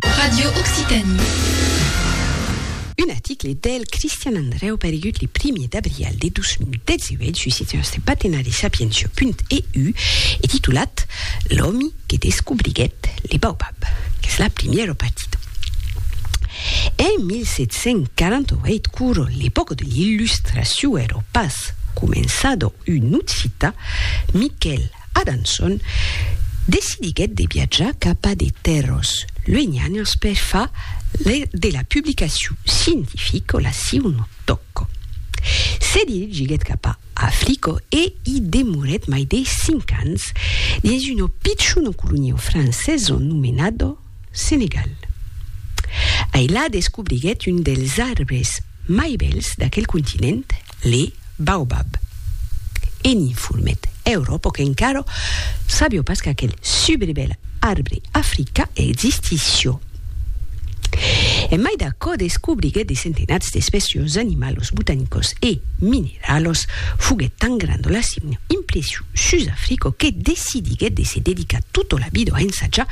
Radio Occitanie. Un article del Cristian Andrèu paregut le primier d'abrial de 2018 sus eth nòste patenari sapientia.eu e titulat L'òmi que descobriguèt le baobab, qu'es la primièra partida. En 1748, quora l'epòca de l'Illustracion èra pas començada, un occità, Miquèl Adanson decidiguèt de viatjar cap a de tèrras luenhanas per far de la publicacion scientifica la siuna tòca. Se dirigiguèt cap a Africa e i demorèt mai de cinc ans dins una pichona colonia francesa nomenada Senegal. Ailà descobriguèt un dels arbres mai bèls d'aquel continent, le baobab. E n'i fulmet Euròpo qu'encara sabió pas qu'aquel subribèl arbre africa existissió. En mai d'aquò descobriguèt de centenats d'espècios d'animalos botanicos e mineralos, foguèt tan granda la signe impression sus Africo que decidiguèt de se dedicar tota la vida a ensajar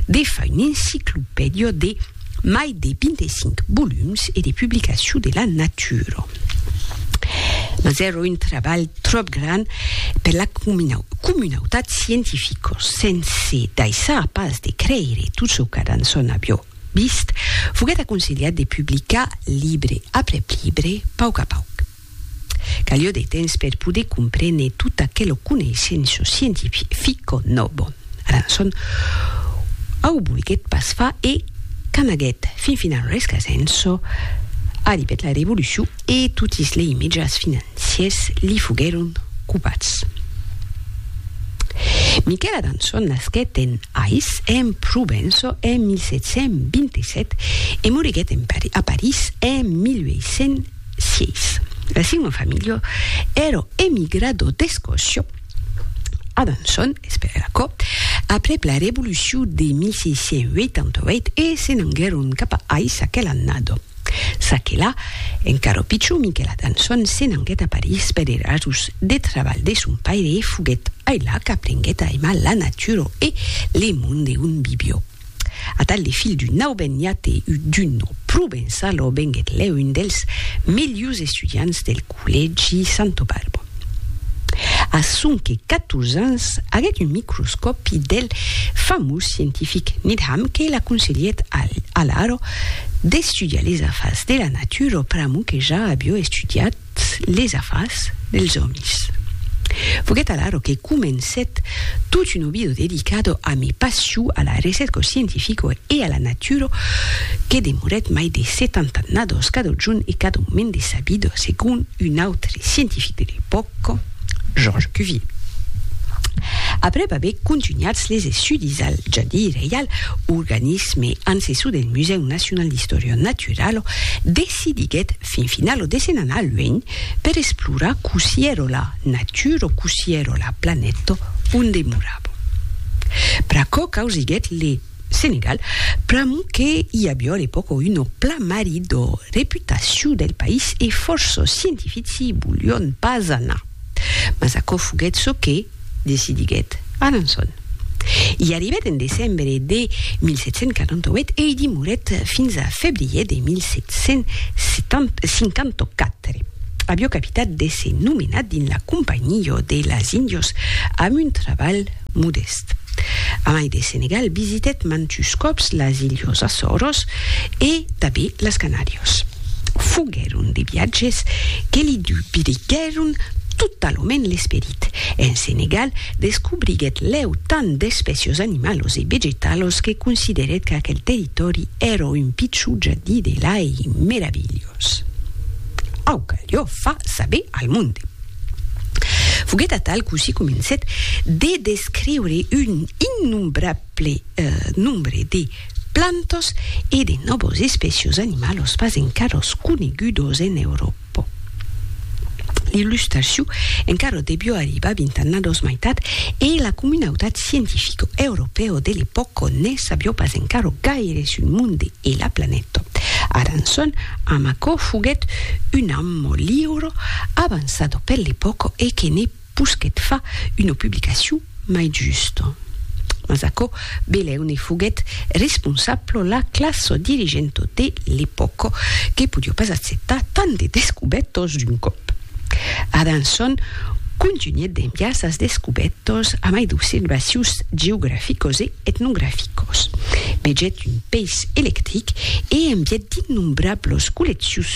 de far un'enciclopèdia de mai de 25 volums e de publicacion de la natura. Mas èra un trabalh tròp grand per la comunautat scientifica, sense daissar pas de creire tot çò que d'ançon avió vist, foguèt aconselhat de publicar libre aprèp libre, pauc a pauc. Calió de temps per poder comprene tot aquelo coneissenço scientifico nobo. Arançon au volguet pas far e qu'amaguet fin final rescasenço, arribet la revolucion e totis lei mejans financiers li foguèron copats. Miquel Arançon nasquet en Ais, en Provenço, en 1727 e moriguet a París en 1800. Sièis. La siua familha èra emigrada d'Escòcia a Besançon, esperèra aquò, aprèp la Revolucion de 1688 e se n'anguèron cap a Ais aquela annada. Çaquelà, encara pichon, Miquèl Adançon se n'anguèt a París per era rasons de trabalh de son paire e foguèt ailà qu'aprenguèt a aimar la natura e le monde on vivió. Atal de filh d'un auben niat e un dunho provençal aubenguèt lèu un dels melhors estudiants del collègi Santo Balbo. A sonque 14 ans aguèt un microscòpi del famós scientific Needham que l'aconselhèt alara d'estudiar les afars de la natura pr'amor que ja aviá estudiat totes les afars dels òmis. Foguèt alaro que comencèt tot un obido dedicado a mi passion a la recerca scientifica e a la natura que demorèt mai de 70 annadas cada jorn e cada moment de sa vida, segon un autre scientific de l'epòca, Georges Cuvier. Aprèp aver contunhats les estudis al Jardí Reial, organisme ancessor del Musèu Nacional d'Istòria Naturala, decidiguèt fin finau lo desen anar luenh per esplorar cossí ero la natur o cossí ero la planèto onde morabo. Pr'aquò causiguèt le Senegal, pr'amor que i avió a l'epòca un oplamari d'o reputaciu del país e fòrça scientifici volion pas anar. Mas aquò foguèt çò que. decidiguèt Alençon. I arribèt en decembre de 1748 e i demorèt fins a febrièr de 1754. Avió capitat d'èsser nomenat dins la Companhiá de las Índios amb un trabalh modèst. Amai de Senegal, visitèt mantus còps las Ilhos Açòros e tanben las Canàrias. Foguèron de viatges que li dubriguèron totalament l'esperit. Egipte, en Senegal, descobriguèt lèu tant d'espècios animalos e vegetalos que considerèt qu'aquel territòri èra un pichon jardí de lai meravilhós. Au calió fa saber al monde. Foguèt atal cossí comencèt de descriure un innombrable nombre de plantas e de nòvos espècios animalos pas encaras conegudos en Euròpa. po. L'illustraciu encara debió arribar vint annados maitat e la comunautat scientifico europeo de l'epòca ne sabió pas encara gaire sul monde e la planeta. Aranson, amb aquò, foguèt un ammo liuro avançado per l'epòca e que ne Pus que't fa una publicacion mai justa. Mas aquò belèu ne foguèt responsabla la classa dirigenta de l'epòca, que podiá pas acceptar tant de descubètas d'un còp. Adanson contunhèt d'enviar sas descubètas a mai d'observacions geograficas e etnograficas. Vegèt un peis electric e envièt d'innombrablas colleccions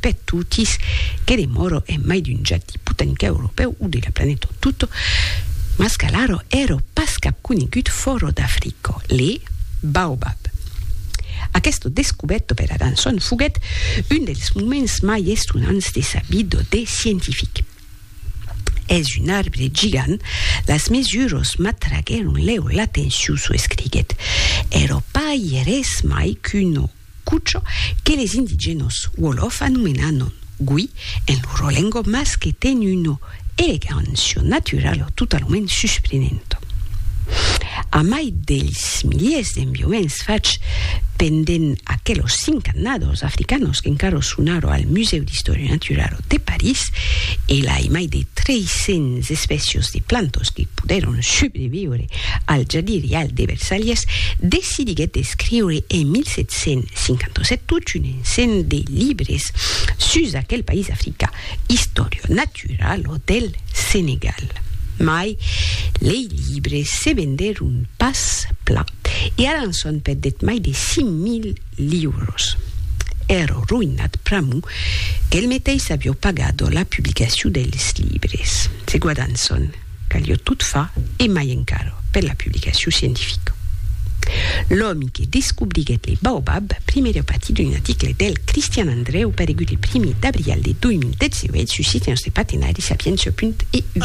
per totis, que demòro en mai d'un ja diput en qué europèu o de la planeta o tot, mas qu'alara ère pas cap conegut fòra d'Africa, le baobab. Aquesta descubèrta per Adanson foguèt un dels moments mai estonants de sa vida de scientific. Es un arbre gigant, las mesuras m'atraguèron lèu l'atencion, çò escriguèt. Ère pas ières mai qu'una Cucho, que les indigènos wolof anomenanon gui en loro lengua mas que ten una elegancia naturala totalament susprenenta. Amai dels miliers d'enviaments fachs pendent aquelos cinc annadors africanos qu'encara son ara al Musèu d'Istòria Naturala de París e lai mai de 300 espècias de plantas que podèron subreviure al jardí rial de Versalhes, decidiguèt d'escriure en 1757 tot un ensenh de libres sus aquel país africà, Historia naturalo del Senegal. Mai lei libres se vendèron pas plan, e Alanson perdèt mai de 5.000 liuros. Èrò roïnat pr'amor qu'el meteis avió pagado la publicacion dels libres. Segu Alanson, Calió tot far, e mai encara, per la publicacion scientifica. L'òmi que descobriguèt le baobab, primièr a patir d'un article del Cristian Andreu paregut le primièr d'abrial de 2018 sus Sitiens de Patenari, Sapiença. Int. Eu.